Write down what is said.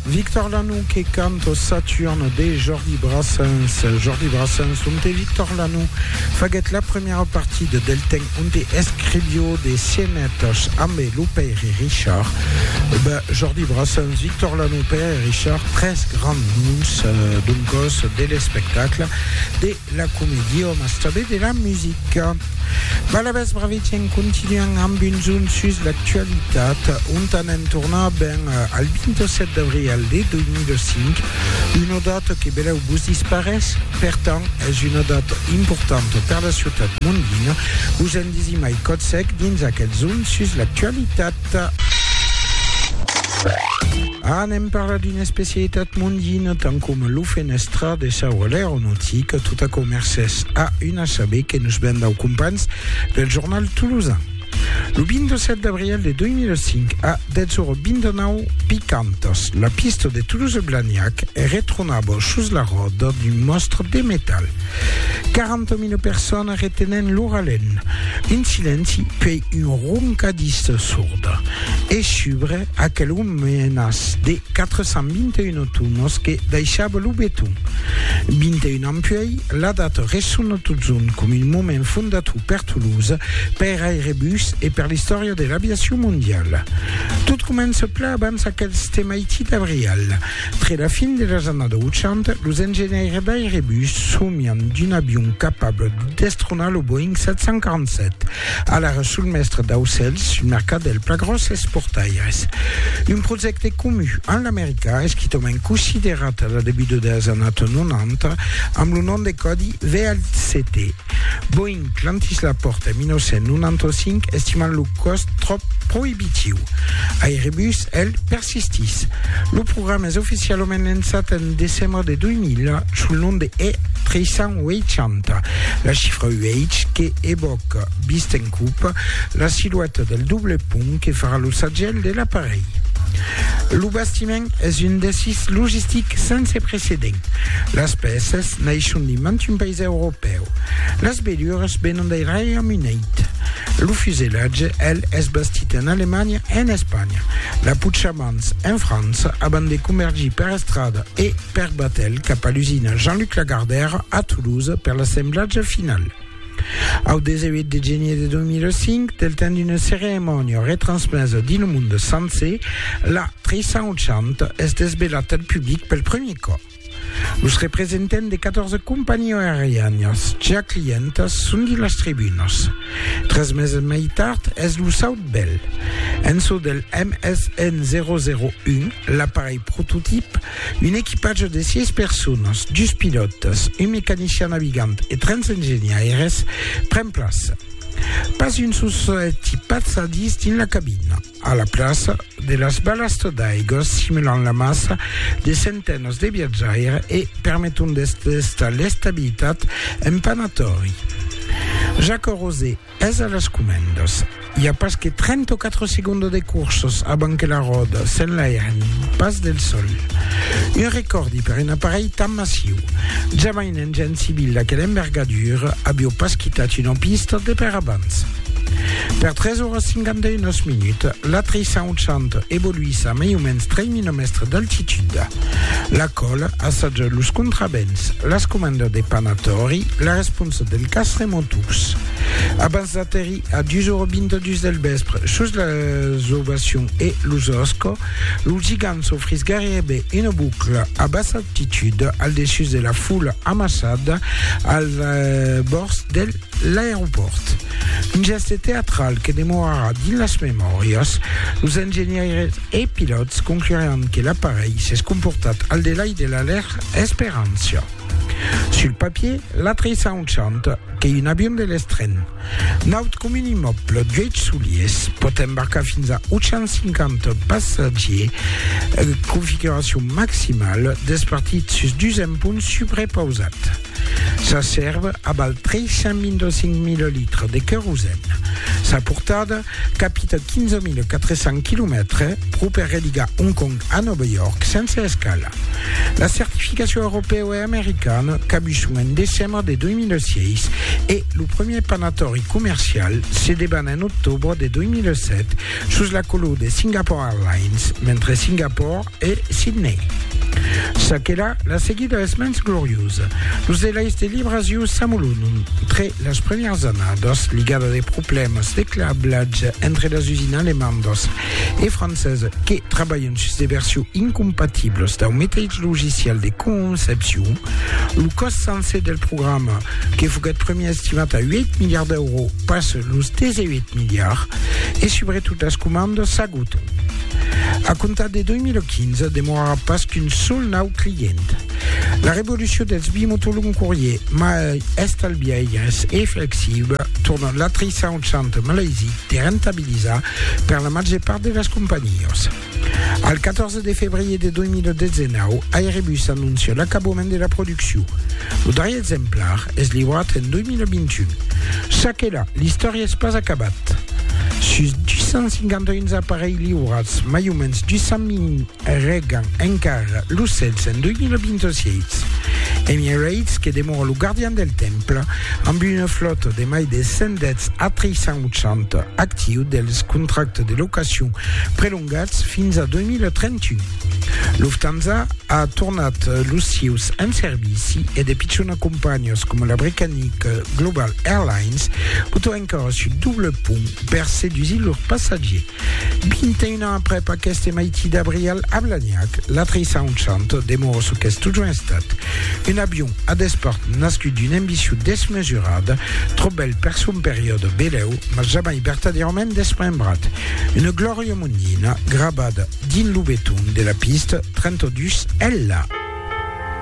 Victor Lanoux que canto Saturne de Jordi Brassens. Jordi Brassens, on te Victor Lanoux faguèt la premièra partida del temps onde escrivió de scenetas ambe lo Pèire Richard, ben, Jordi Brassens, Victor Lano, Pèire Richard, tres grands noms, d'un còs, de l'espectacle, de la comèdia, mas tanben de la musica. Balabèth Bravici en continuant amb un zoom sus l'actualitat, ont anem tornar, ben, al 27 d'abrièl de 2005, Una data que belèu vos disparés, per tant es una data importanta per la ciutat mondina, vos en disimai còth sec dins aquel zoom sus l'actualitat. Anem parlar d'una especialitat mondina tant coma lo fenèstra de sa ora l'aeronautica, tot aquò mercés a un assaber que nos ven dau companhs del jornal tolosan. Lo 27 d'abrièl de 2005, a 10:29 picantas, la pista de Toulouse-Blagnac retronava sus la ròda d'un mòstre de metal. 40.000 personas retenent lo ralent, un silenci puèi un roncadís sorda e subre Aquelo menas de 421 tonos que daishava lo beton. 21 ans puèi, la data ressona totjorn com un moment fondator per Toulouse, per Airbus e per l'istòria de l'aviacion mondiala. Tot comença plan abans aquels de maiti d'abrial. Tre la fin de las annadas 80, los engenhaires d'Airbus somian d'un avion capable de destronar lo Boeing 747. Alara sul mèstre d'aucèls, un mercat del pla gròsses portaires. Un projècte comu amb l'Americà, esquitament considerat a la debuta deles annato 90 amb lo nom de còdi VLCT. Boeing clantís la pòrta en 1995 estimant lo còst tròp proibitiu. Airbus, el, Sistis. Lo programa es oficialament lançat en decembre de 2000 sul nom de E380. La chifra UH que evòca Bisten Coupe, la silueta del doble pont que farà lo sagèl de l'aparelh. Lo bastiment es un desís logistic sense precedent. Las pèças naishon de mantun país europèu. Las velures venon del Reiaume Unit. Lo fusellatge, el, es bastit en Alemanha e en Espanha. La Puchamans, en França, abans de comergir per estrada e per batèl cap a l'usina Jean-Luc Lagardère, a Toulouse, per l'assemblatge final. Au 18 de genier de 2005, del temps d'una ceremònia retransmesa dins lo monde sencer, la 380 es desvelat al public pel premier còp. Los representants de 14 companhiás aerianas ja clientas son dins las tribunas. Tres meses mai tard es lo saut bèl. En çò del MSN 001, l'aparelh prototip, un equipatge de 6 personas, dus pilòtas, un mecanician navigant e 30 engenhaires, pren plaça. Pas un sol solet i pas sadís dins la cabina. A la plaça de las balastras d'aiga simulan la massa de centenats de viatjaires e permeton d'estar l'estabilitat en panatòri. Jacques Rosé es a las comendas. I a pas que 34 segondas de corsas abans que la ròda s'enlairen pas del sòl. Un recòrdi per un aparelh tan massiu. Jamain Un gènt civil d'aquela envergadura avió pas quitat una pista de per abans. Per 3 oras 51 minuts, la 300 evoluís a mai o mens 3.000 mèstres d'altitud. La còl assaja los contravents, las comandas de panatori, la responsa del cas remoturs. Abans d'aterrir a 2h22 del vèspre sus las ovacions e los oscos, lo gigant s'ofrís gairebe una bucla a bassa L'altitud, al dessús de la foula amassada al bòrds de l'aeropòrt. Un gèste teatral que demorarà dins las memòrias. Los engenhaires e pilòts concluràn que l'aparelh s'es comportat al delai de la lèr esperància. Sul papier, l'aterrissament chanta que un avion de l'estren. Naut comun immòble d'uèch soliers, pòt embarcar fins a 850 passatgiers, configuracion maximala, despartit sus dus empons subrepausat. Sa sèrva aval 325.000 litres de querosèn. Sa portada Capita 15.400 quilomètres pro per religar Hong Kong a Nòva York sense escala. La certificacion europèu e americana cabuson en decembre de 2006 e lo premier panatòri comercial se deban en octobre de 2007 sus la color de Singapore Airlines, mentre Singapore e Sidney. Çaquelà, la seguida es mens gloriosa. Los delais de libracion s'amolonon tre las premièras annadas, ligada de problèmas de cablatge entre las usines alemandas e francesa que trabalhan sus de versions incompatibles dau meteis logicial de concepcion. Lo còst sancer del programa, que foguèt premier estimat a 8 miliards d'èuros, passa los 18 miliards e subretot las comandas Auto. A comptar de 2015, demorarà pas qu'un sol nau client. La revolucion dels bimotolongs courier mai estalbiaires e flexible torna l'atrissar un centre malaisic de rentabilizar per la màger part de las companhias. Al 14 de febrier de 2019, Airbus anoncia l'acabament de la produccion. Lo darrier exemplar es liurat en 2021. Ça que la, l'istòria es pas acabat. Sus 251 aparelhs liurats, mai o mens 200.000 regan encara lo cèls en 2026. Emirates, que demora lo gardian del temple, amb una flòta de mai de 110 A380 actiu dels contractes de locacion prelongats fins a 2031. Lufthansa a tornat los sieus en servici e de pichona companhias coma la britannica Global Airlines botan encara sul doble pont per sedusir lors passatgiers. 21 ans aprèp aqueste maiti d'abrial a Blagnac, la 380 demora çò qu'es totjorn estat, un avion a despart nascut d'una ambicion desmesurada, tròp bèl per son periòde belèu, mas jamai vertadièrament desmembrat. Una glòria monina grabada Dins lo beton de la pista 32 ella.